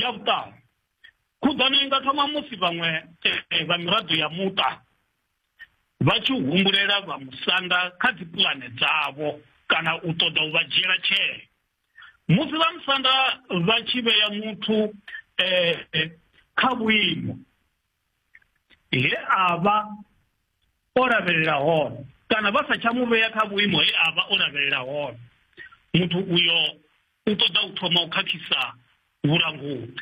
ya vhuṱanu khuḓano i nga thoma musi vhaṅwe eh, vha miraḓo ya muṱa vha tshi humbulela vha musanda kha dzipulane dzavho kana u ṱoḓa u vha dzhiela tshee musi vha musanda vha tshi vhea muthu um kha vhuimo he a vha o lavhelela hone kana vha sa tsha mu vhea kha vhuimo he a vha o lavhelela hone muthu uyo u ṱoḓa u thoma u khakhisa vhulanguli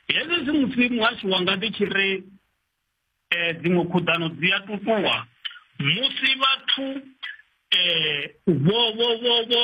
hezwi zwi musi muhasho wanga ndi tshi ri um dziṅwe khuḓano dzi a tutuwa musi vhathu um vho vho vho vho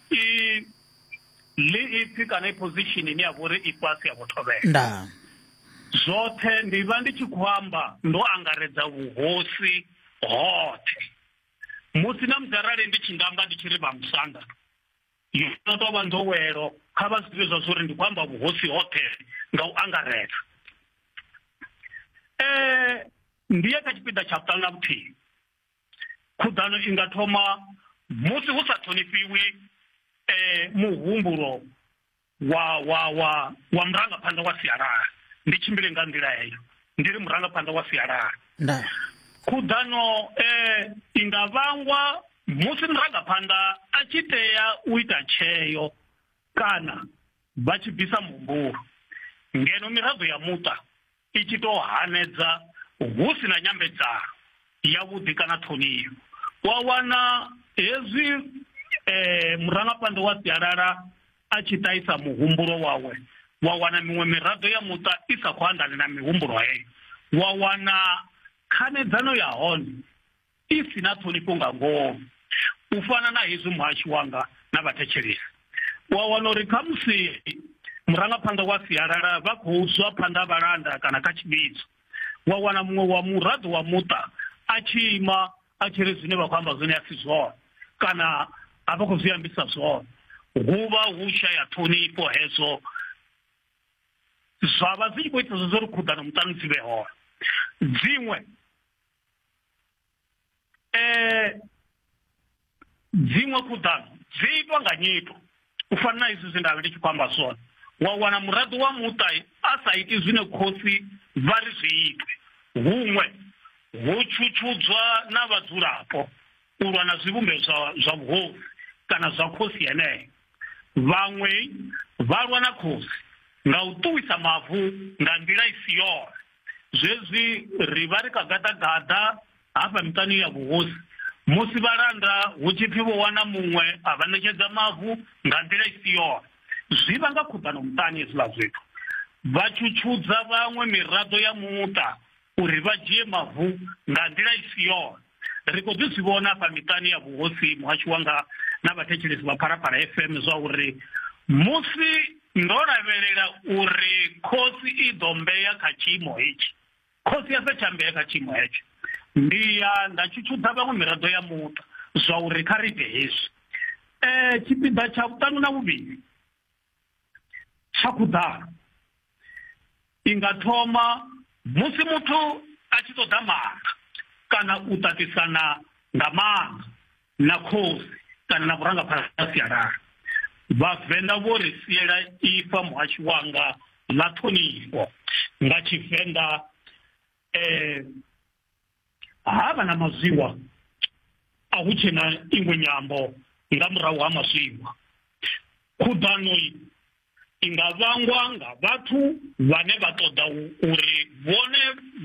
i ḽi ipfi kana i position ine ya vha uri i fhasi ya vhuthovhela nda zwoṱhe ndi vha ndi tshi khou amba ndo angaredza vhuhosi hoṱhe musi na musi arali ndi tshi nga amba ndi tshi ri vha musanda yo no tou vha nḓowelo kha vha zwi ḓivhe zwa zwa uri ndi khou amba vhuhosi hoṱhe nga u angaredza um ndi ye kha tshipiḓa tsha vhuṱanu na vhuthihi khuḓano i nga thoma musi hu sa ṱhonifhiwi eh muhumbulo wa wa wa wa murangaphanḓa wa sialala ndi tshimbile nga nḓila heyo ndi ri murangaphanḓa wa sialala nda khuḓano eh i nga vhangwa musi murangaphanḓa a tshi tea u ita tsheo kana vha tshi bvisa muhumbulo ngeno miraḓo ya muṱa i tshi tou hanedza hu si na nyambedzano yavhuḓi kana ṱhonifho wa wana hezwi um eh, murangaphanḓa wa sialala a tshi ṱahisa muhumbulo wawe wa wana miṅwe miraḓo ya muṱa i sa khou anḓane na mihumbulo heyo wa wana khanedzano ya hone i si na ṱhonifho nga ngoho u fana na hezwi muhashi wanga na vhathetshelesi wa wana uri khamusi murangaphanḓa wa sialala vha khou zwa phanḓa vhalanda kana kha tshivhidzo wa wana muṅwe wa muraḓo wa muṱa a tshi ima a tshi ri zwine vha khou amba zwone a si zwone kana a vha khou zwi ambisa zwone hu vha hu shaya ṱhonifho hezwo zwa vha zwi tshi khou itisa zwo ri khuḓano muṱani dzi vhe hone dziṅwe eh dziṅwe khuḓano dzi itwa nga nyito u fana na izwi zwe nda vhe ndi tshi khou amba zwone wa wana muraḓo wa muṱa a sa iti zwine khosi vha ri zwi itwe huṅwe ho tshutshudzwa na vhadzulapo u lwa na zwivhumbeo zwa zwa vhuhosi kana zwa khosi yeneyo vhaṅwe vha lwa na khosi nga u ṱuwisa mavu nga nḓila i si yone zwezwi ri vha ri kha gaḓagaḓa hafha miṱani ya vhuhosi musi vhalanda hu tshi pfi vho wana muṅwe a vha ṋetshedza mavu nga nḓila i si yone zwi vha nga khuḓano muṱani hezwiḽa zwithu vha tshutshudza vhaṅwe miraḓo ya muṱa uri vha dzhie mavu nga nḓila i si yone Ri khou ḓi zwi vhona afha miṱani ya vhuhosi muhashu wanga na vhathetshelesi vha Phalaphala FM zwa uri musi ndo lavhelela uri khosi i ḓo mbeya kha tshiimo hetshi, khosi ya sa tsha mbeya kha tshiimo hetsho. Ndi ya nda tshutshudza vhaṅwe miraḓo ya muṱa zwa uri kha ri ite hezwi. Tshipiḓa tsha vhuṱanu na vhuvhili. tsha khuḓano i nga thoma musi muthu a tshi ṱoḓa maga kana u ṱaṱisana nga maga na khosi kana na vhurangaphanḓa ha sialala vhavenḓa vho ri siela ifa muhashi wanga ḽa ṱhonifho nga tshivenḓa um ha vha na mazwiwa a hu tshe na iṅwe nyambo nga murahu ha mazwiwa khuḓano i nga vhangwa nga vhathu vhane vha ṱoḓa uri vhone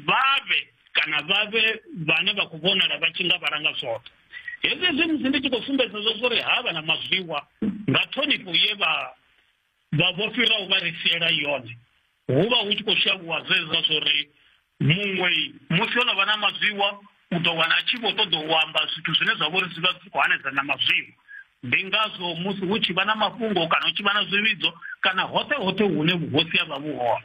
vha vhe kana vha vhe vhane vha khou vhonala vha tshi nga vha langa zwoṱhe hezwi zwi musi ndi tshi khou sumbedza zwo zwo ri ha vha na mazwiwa nga ṱhonifho ye vha vha vho fhiraho vha ri siela yone hu vha hu tshi khou shavhuwa zwezwa zwo ri muṅwe musi o no vha na mazwiwa u ḓo wana a tshi vho ṱoḓa u amba zwithu zwine zwa vha uri zwi vha zwi khou hanedza na mazwiwa ndi ngazwo musi hu tshi vha na mafhungo kana hu tshi vha na zwivhidzo kana hoṱhe hoṱhe hune vhuhosi ha vha vhu hone